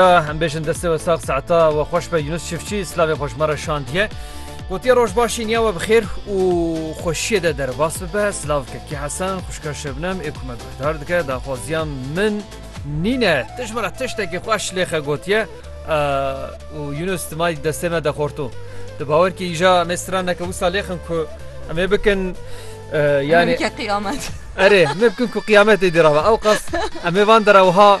Em bêjin destê we sax saeta we xweş be Yunus Çiftçi slavê xweş me re şandiye. Gotiye rojbaşî niya we bi xêr û xweşiyê de derbas bibe silav Kekî Hesen xuşka Şebnem ê ku me guhdar dike daxwaziya min nîne tu ji min re tiştekî xweş lêxe gotiye û Yunus tu may destê me de xorto. Tu bawer kî îja me stran neke wisa lêxin ku em ê bikin yani qiyâmet. Erê me bikin ku qiyâmetê dî rava ew qas em ê van dera wiha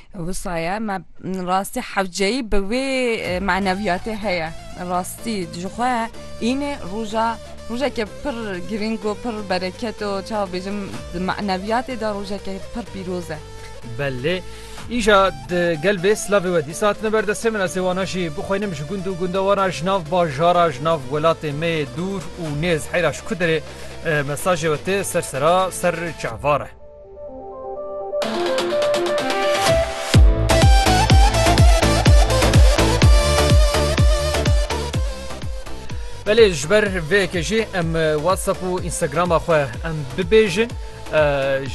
Wisa ye me rastî hewceyî bi wê maneviyatê heye rastî jixwe înê roja rojeke pir girîng û pir bereket û çawa bêjim di maneviyatê de rojeke pir pîroz e. Belê. Îja di gel bê silavê we dîsa hatine ber destê min ez ê wana jî bixwînim ji gund û gundewana ji nav bajara ji nav welatê me yê dûr û nêz heyra ji ku derê mesajê we tê ser sera ser çavare. Belê ji ber vê yekê jî em WhatsApp û Instagrama xwe em bibêjin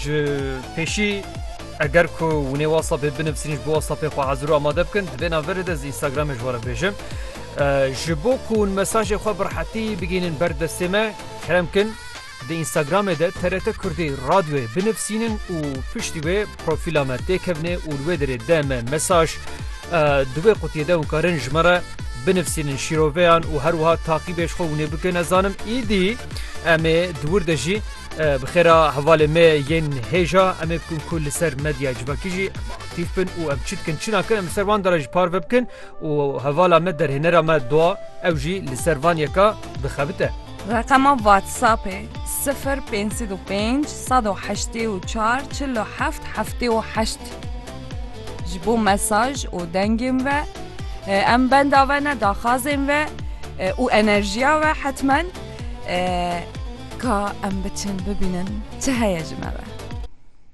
ji pêşî eger ku hûnê WhatsAppê binivîsîn ji bo WhatsAppê xwe hezir û amade bikin di vê navê de ji Instagramê ji were bêjim ji bo ku hûn mesajê xwe bi rehetî bigihînin ber destê me kerem kin Di Instagramê de TRT Kurdî Radyoyê binivîsînin û piştî wê profîla me tê kevnê û li wê derê de me mesaj. Di wê qutiyê de hûn karin ji me re binivîsînin şîroveyan û her wiha taqîbê ji xwe hûnê bikin. Ez zanim îdî em ê di wir de jî bi xêra hevalên me yên hêja em ê bikin ku li ser medya civakî jî aktîf bin û em çi dikin çi nakin em li ser wan de re jî parve bikin û hevala me derhênera me doa ew jî li ser van yeka bixebite. Reqema WhatsAppê, sifir pênc sed û pênc sed û heştê û çar çil û heft heftê û heşt Ji bo mesaj û dengên ve em benda ve ne daxwazên ve û enerjiya ve hetmen ka em biçin bibînin çi heye ji me ve.